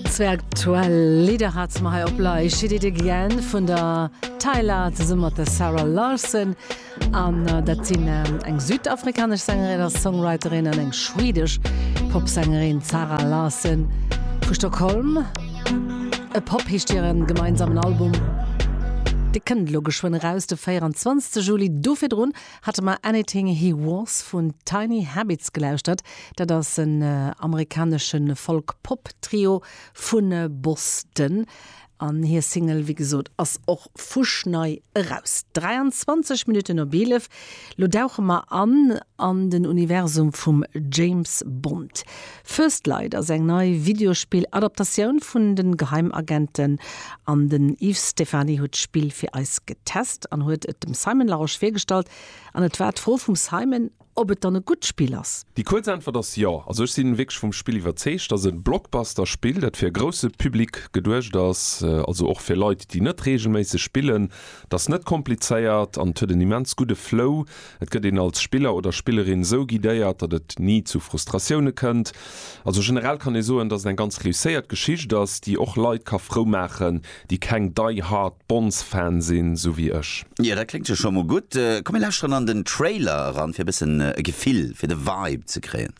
Zwee aktuell Lidder hate mer hei op Lay, She Did It Again vun der Tyla zesumme mat der Sarah Larsson. An dat sinn eng südafrikanesch Sängerin a Songwriterin an eng schwedesch Popsängerin, d'Sarah Larsson vu Stockholm. E Pop heescht hiren gemeinsamen Album. Dee kënnt elo geschwënn eraus, de 24. Juli. Do virdrun Hate mer Anything He Wants vun Tiny Habits gelauschtert. Dat ass en amerikanesche Folk-Pop-Trio vu Boston. An hir Single, wéi gesot, ass och fuschnei eraus. 23 Minutten op 11. Lo dauche mer an an den Universum vum James Bond. First Light ass eng nei Videospill-Adaptatioun vun de Geheimagenten an den Yves Stephany huet d'Spill fir eis getest an huet et dem Simon Larosche virgestallt an et war d'Fro vum Simon, ob et dann e gutt Spill ass. Déi kuerz Äntwert ass jo. Also ech sinn wierklech vum Spill iwwerzeegt. Ass en Blockbuster-Spill dat fir e grousse Public geduecht ass, also och fir Leit déi net reegelméisseg spillen. Et ass net komplizéiert an et huet en immens gudde Flow. Et gëtt een als Spiller oder Spillerin sou guidéiert, datt et ni zu Frustratioune kënnt. Also generell kann ee soen, datt et eng ganz reusséiert Geschicht ass, déi och Leit ka frou maachen, déi keng die hard Bonds-Fan sinn, sou wéi ech. Jo, dat kléngt jo scho mol gutt. Komm mir lauschteren an den Trailer eran, fir e bëssen e Gefill fir de Vibe ze kréien.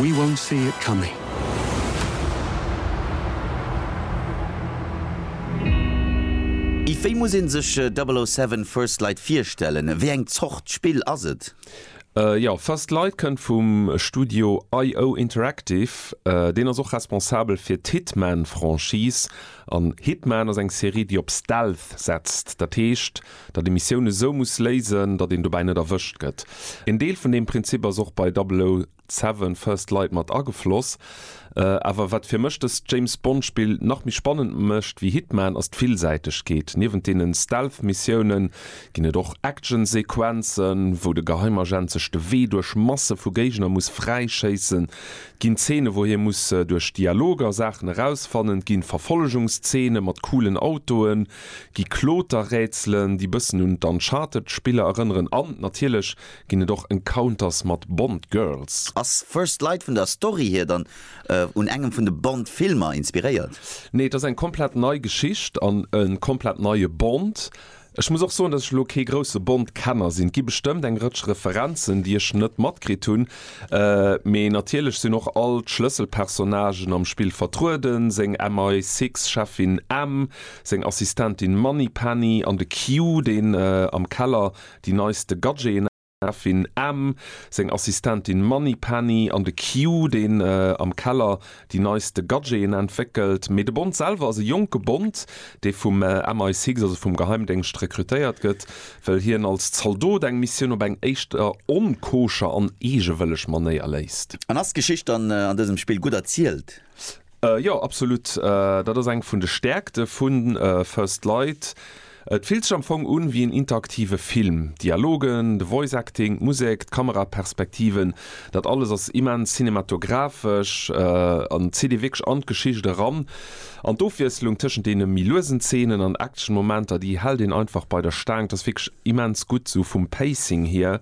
We won't see it coming. Yves, wéi muss ee sech 007 First Light virstellen? Wéi eng Zort Spill ass et? Jo, First Light kënnt vum Studio IO Interactive. Deen ass och responsabel fir d'Hitman-Franchise. An Hitman ass eng Serie, déi op Stealth setzt. Dat heescht. datt ee Missioun esou muss léisen, datt een dobäi net erwëscht gëtt. Een Deel vun deem Prinzip ass och bei 007, First Light mat agefloss. Awer wat fir mech dëst James Bond Spill nach méi spannend mécht ewéi Hitman ass d'Villsäitegkeet. Niewent deene Stealth Missiounen ginn et och Action Sequenzen, wou de Geheimagent sech de Wee duerch Masse vu Géigner muss fräi schéissen. Et ginn Zeene wou hie muss duerch Dialoger Saachen erausfannen, et ginn Verfollegungszeene mat coolen Autoen, Gi Kloterrätselen, déi bëssen un d'Uncharted-Spiller erënneren an natierlech ginn et och Encounters mat Bond-Girls. Ass First Light vun der Story hier dann un engem vun de Bond-Filmer inspiréiert? Nee, et ass eng komplett nei Geschicht an e komplett neie Bond. Ech muss och soen, dass ech elo kee grousse Bond-Kenner sinn. Et gi bestëmmt eng Rëtsch Referenzen, déi ech net matkritt hunn, mee natierlech sinn och all d'Schlësselpersonnagen am Spill vertrueden, seng MI-Six-Cheffin M, seng Assistentin Money Penny an de Q, deen am Keller déi neiste Gadgeten entdeckt. D'Cheffin M, seng Assistentin Money Penny an de Q, deen am Keller déi neiste Gadgeten entwéckelt. Mee de Bond selwer ass e jonke Bond, dee vum MI6, also vum Geheimdéngscht, rekrutéiert gëtt, well hien als Zaldot eng Missioun op eng éischter onkoscher an eegewëlleg Manéier léist. An ass d'Geschicht dann an dësem Spill gutt erzielt? Jo, absolut. Dat ass eng vun de Stäerkte vu First Light. Et fillt sech am Fong un wéi en interaktive Film. D'Dialogen, de Voice Acting, d'Musek, d'Kameraperspektiven, dat alles ass immens cinematographesch an zitt ee wierklech an d'Geschicht eran. An d'Ofwiesslung tëschent deene méi luesen Zeenen an Action-Momenter, déi hält een einfach bei der Staang. Dat ass wierklech immens gutt, esou vum Pacing hier.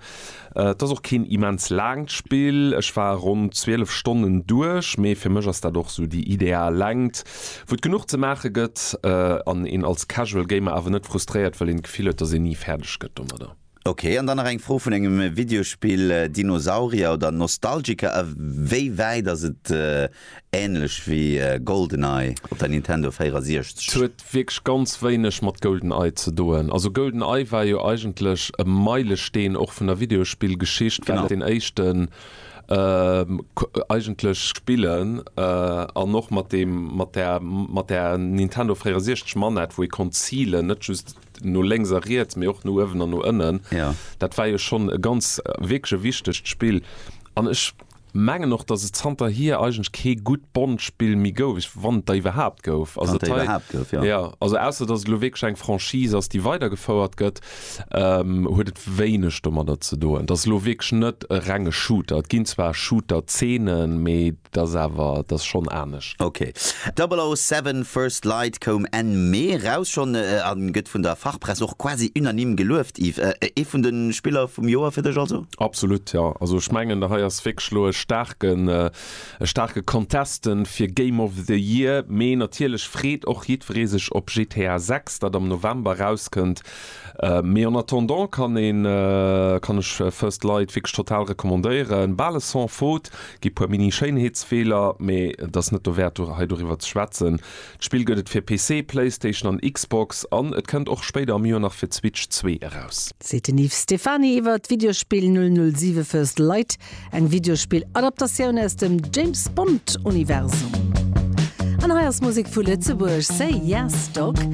Et ass och keen immens laangt Spill, ech war ronn 12 Stonnen duerch, mee fir mech ass dat och sou déi ideal Längt, wou et genuch ze maache gëtt an een als Casual Gamer awer net frustréiert, well een d'Gefill huet, dass een ni fäerdeg gëtt domadder. Ok, an dann nach eng Fro vun engem Videospill, Dinosaurier oder Nostalgiker, a wéi wäit ass et Ähnlech wéi Goldeneye op der Nintendo 64. Huet wierklech ganz wéineg mat Goldeneye ze doen. Also Goldeneye war jo eigentlech e Meilesteen och vun der Videospillgeschicht, well et deen éischten eigentlech. Spillen an och mat deem mat der mat der Nintendo 64 Manett, wou ee konnt zilen, net just no lénks a riets, mee och no uewen an no ënnen. Dat war jo schonn e ganz wierklech e wichtegt Spill an ech. Mengen och dass et zanter hier eigentlech kee gutt Bond-Spill méi gouf, ech wann et der iwwerhaapt gouf. Wann et der iwwerhaapt gouf, jo. Jo, also ausser dass et elo wierklech eng Franchise ass, déi weidergefouert gëtt, huet et wéineg domadder ze doen. Et ass elo wierklech net e renge Shooter. Et ginn zwar Shooter-Zeenen, mee et ass awer, et ass schonn anescht. Ok. 007 First Light koum Enn Mee raus schonn a gëtt vun der Fachpress och quasi unanime gelueft. Yves, ee vun de Spiller vum Joer fir dech also? Absolut, jo. Also ech mengen, hei ass wierklech elo e staarken, e staarke Contesten fir Game of the Year. Mee natierlech freet och jiddweree sech op GTA 6, dat am November erauskënnt. Mee en attendant kann een, kann ech First Light wierklech total recommandéieren. Bal e Sans-Faute, gi puer Mini-Schéinheetsfeeler, mee et ass net dowäert, do hei doriwwer ze schwätzen. D'Spill gëtt et fir PC, Playstation an Xbox an et kënnt och spéider am Joer nach fir d'Switch zwee eraus. Seet den Yves Stephany iwwer d'Videospill 007 First Light, eng Videospill-Adaptatioun aus dem James Bond-Universum. An hei ass Musek vu Lëtzebuerg, Say Yes Dog.